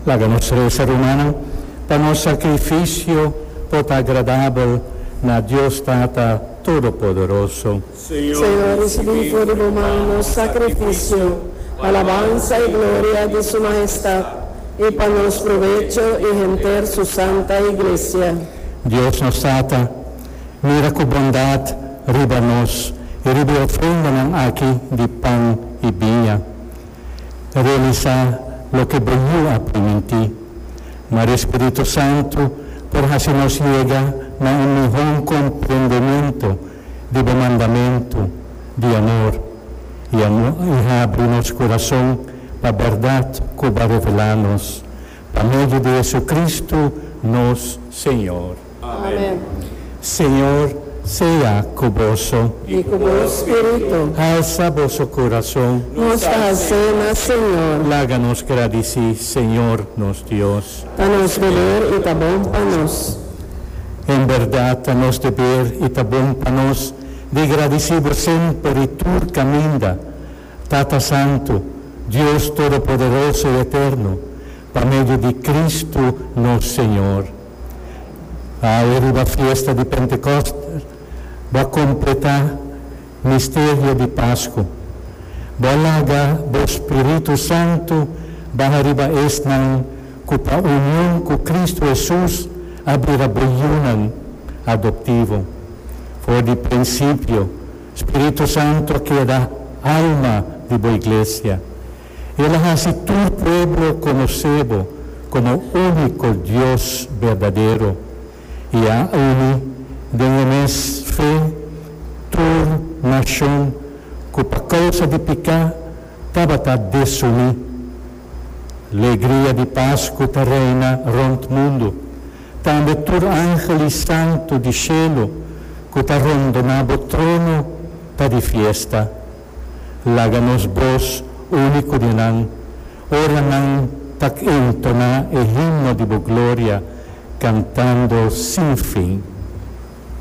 Laga nos resa, rumannan, pa nos sakrifisio por ta agradabel na Dios Tata Todopoderoso. Señor, risibí for di bo man nos sakrifisio, pa labansa i gloria di Su Mahestat, i pa nos provecho i henter Su santa Iglesia. Dios nos Tata, mira ku bondat riba nos i riba e ofrendanan aki di pan i biña. Realisá loke bo yu a primintí. Ma e Spiritu Santu por hasi nos yega na un mihon komprendementu di bo mandamentu di amor i habri nos kurason pa bèrdat ku bo a revelá nos pa medio di JesuCristu nos Señor. Amen. Señor sea cu boso. Y cu bo spirito. Halsa boso curazon. Nos ta hacé na Señor. Laga nos gradici Señor nos Dios. Ta nos deber y ta bon pa nos. En berdad ta nos deber y ta bon pa nos di gradici bo semper y tur caminda, Tata Santo, Dios Todopoderoso y Eterno, pa medio di Cristo nos Señor. Awe riba fiesta di Pentecost bo a completá misterio di Pascu. Bo a laga bo Spiritu Santu baha riba esnan cu pa union cu Cristo Hesus a bira bo yunan adoptivo. For di principio, Spiritu Santu a keda alma di bo Iglesia. El a hasi tur pueblo konosé bo komo úniko Dios berdadero i a uni den e mes fe tur nashon ku pa kousa di piká tabata desuní. Legria di Pasku ta reina rònt mundu. Tambe tur angel i santu di shelu ku ta rondoná bo trono ta di fiesta. Laga nos bos uni ku dienan, ora nan ta entoná e himno di bo gloria kantando sin fin.